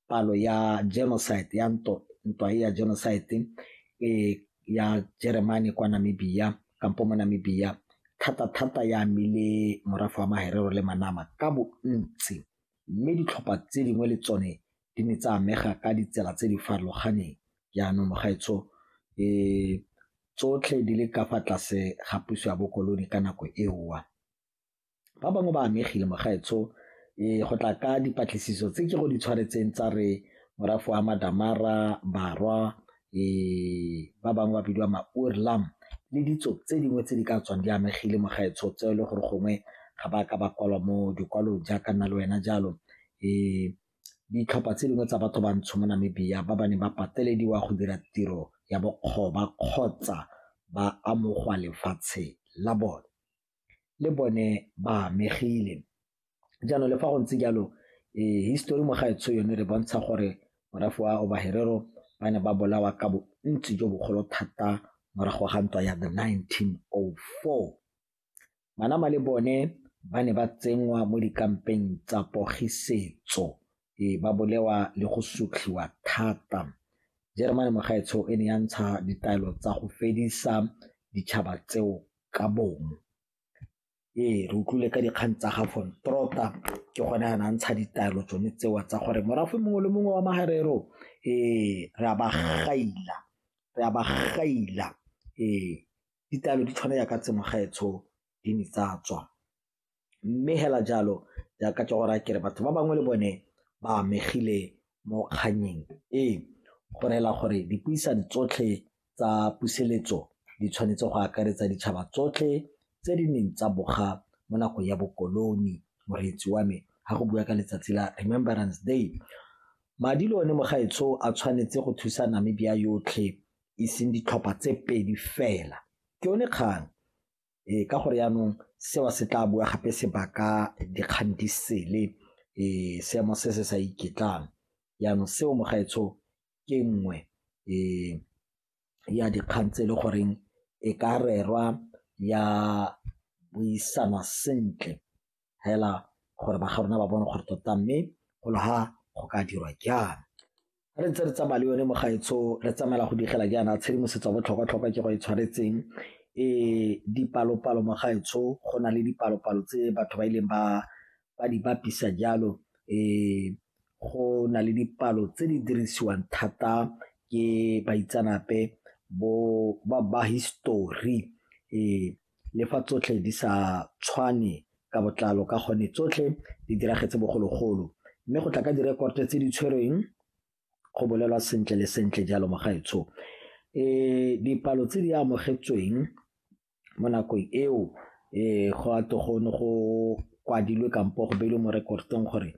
palo ya genocide ya ntwa e ya genocide e ya Jeremane kwa Namibia kampo mo Namibia thata thata ya amile morafe wa Maherero le Manama ka bontsi mme ditlhopha tse dingwe le tsone di ne tsa amega ka ditsela tse di farologaneng jaanong mogaetsho e tsotlhe di le ka fa tlase ga puso ya bokoloni ka nako eowa ba bangwe ba amegile mogaetsho e go tla ka dipatlisiso tse ke go di tshwaretseng tsa re morafe wa madamara barwa e ba bangwe ba bidiwa maurlam le ditso tse dingwe tse di ka tswang di amegile mogaetsho tse e le gore gongwe ga ba ka ba kwalwa mo dikwalong jaaka nna le wena jalo e ditlhopha tse dingwe tsa batho bantsho mo namibia ba ba neng ba patelediwa go dira tiro ya bokgoba kgotsa ba amogwa lefatshe la bone le bone ba amegile. Jaanong le fa go ntse jalo histori mo gaetsho yone re bontsha gore morafe wa Oba Herero ba ne ba bolawa ka bontsi jo bogolo thata morago ga ntwa ya the 1904. Manama le bone ba ne ba tsenngwa mo dikampeng tsa pogisetso e ba bolewa le go sotlhiwa thata jeremane mogaetsho e ne ya ntsha ditaelo tsa go fedisa ditšhaba tseo ka bongwe ee re utlwile ka dikgang tsa ga von trota ke gone a na ntsha ditaelo tsone tsewa tsa gore morafe mongwe le mongwe wa magarero ee re a ba gaila re a ba gaila ee ditaelo di tshwana yaka tse mogaetsho di ne tsa tswa Mme hela jalo jaaka ke gore a kere batho ba bangwe le bone ba amegile mo kgannyeng e, go rela gore dipuisano tsotlhe tsa puseletso di tshwanetse go akaretsa ditšhaba tsotlhe tse di neng tsa boga mo nakong ya bokoloni. Moreetsi wa me ha go bua ka letsatsi la Remembrance Day. Madi le one mogaetsho a tshwanetse go thusa Namibia yotlhe e seng ditlhopha tse pedi fela, ke yone kgang. e ka gore yaanong seo se tla bua gape se baka dikgang di sele e seemo se se sa iketlang yaanong seo mogaetsho ke nngwe e ya dikgang tse e le goreng e ka rerwa ya buisanwa sentle fela gore ba ga rona ba bone gore tota mme go le ga go ka dirwa jang re ntse re tsamaya le yone mogaetsho re tsamaela go digela jaana tshedimosetso ya botlhokwa-tlhokwa ke go e tshwanetseng e dipalo-palo mogaetsho go na le dipalo-palo tse batho ba ileng ba ba di bapisa jalo um go na le dipalo tse di dirisiwang thata ke baitsanape bo ba ba history um Le fa tsotlhe di sa tshwane ka botlalo ka gone tsotlhe di diragetse bogologolo mme go tla ka direkoto tse di tshwerweng go bolelwa sentle le sentle jalo mogaetsho e dipalo tse di amogetsweng mo nakong eo e go a togone go kwadilwe kampo go beilwe mo rekotong gore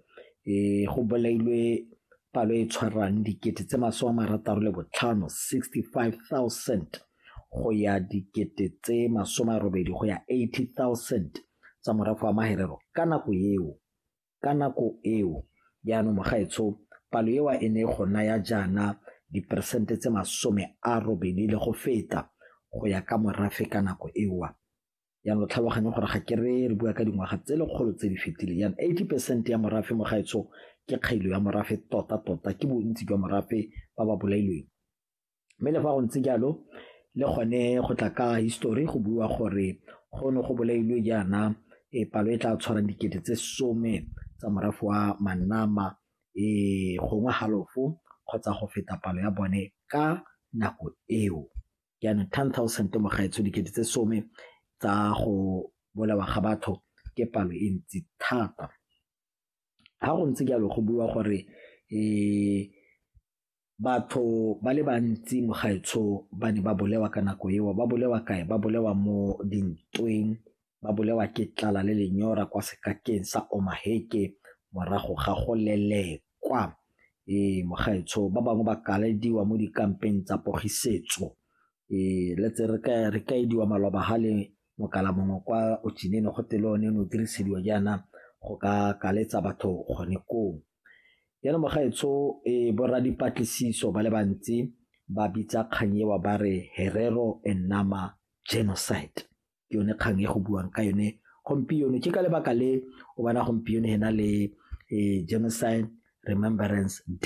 e go bolailwe palo e tshwarang dikete tse masome a marataro le botlhano 65 000 go ya dikete tse masome a robedi go ya 80,000 tsa morafe wa maherero ka nako eo ka nako eo jaanong mogaetsho palo ewa e ne go naya jaana diperesente tse masome a robedi le go feta go ya ka morafe ka nako ewa yang lo tlhaloganye gore ga ke re re bua ka dingwaga tse lekgolo tse di fetileng yang 80 percent ya morafe mo gaetsho ke kgailo ya morafe tota tota ke bontsi jwa morafe ba ba bolailweng mme le fa go ntse jalo le gone go tla ka histori go bua gore go ne go bolailwe jaana e palo e tla tshwarang dikete tse some tsa morafe wa manama e gongwe halofo kgotsa go feta palo ya bone ka nako eo jaanong ten thousand mogaetsho dikete tse some tsa go bolawa ga batho ke palo e ntsi thata ga go ntse jalo go bua gore um Batho ba le bantsi mo gaetsho ba ne ba bolewa ka nako eo. Ba bolewa kae? Ba bolewa mo dintweng, ba bolewa ke tlala le lenyora kwa sekakeng sa Omaheke morago ga go lelekwa. Ee, mo gaetsho ba bangwe ba kalediwa mo dikampeng tsa pogisetso. Ee, let's say re ka ediwa maloba ha le Mokala mongwe kwa Ochinene go tele one ne o dirisediwa jaana go ka kaletsa batho gone koo. Jaanong mogaetsho e borra dipatlisiso ba le bantsi ba bitsa kgang ewa ba re Herero and Nama genocide ke yone kgang e go buang ka yone gompieno ke ka lebaka le o bona gompieno hena le eh, genocide remembrance day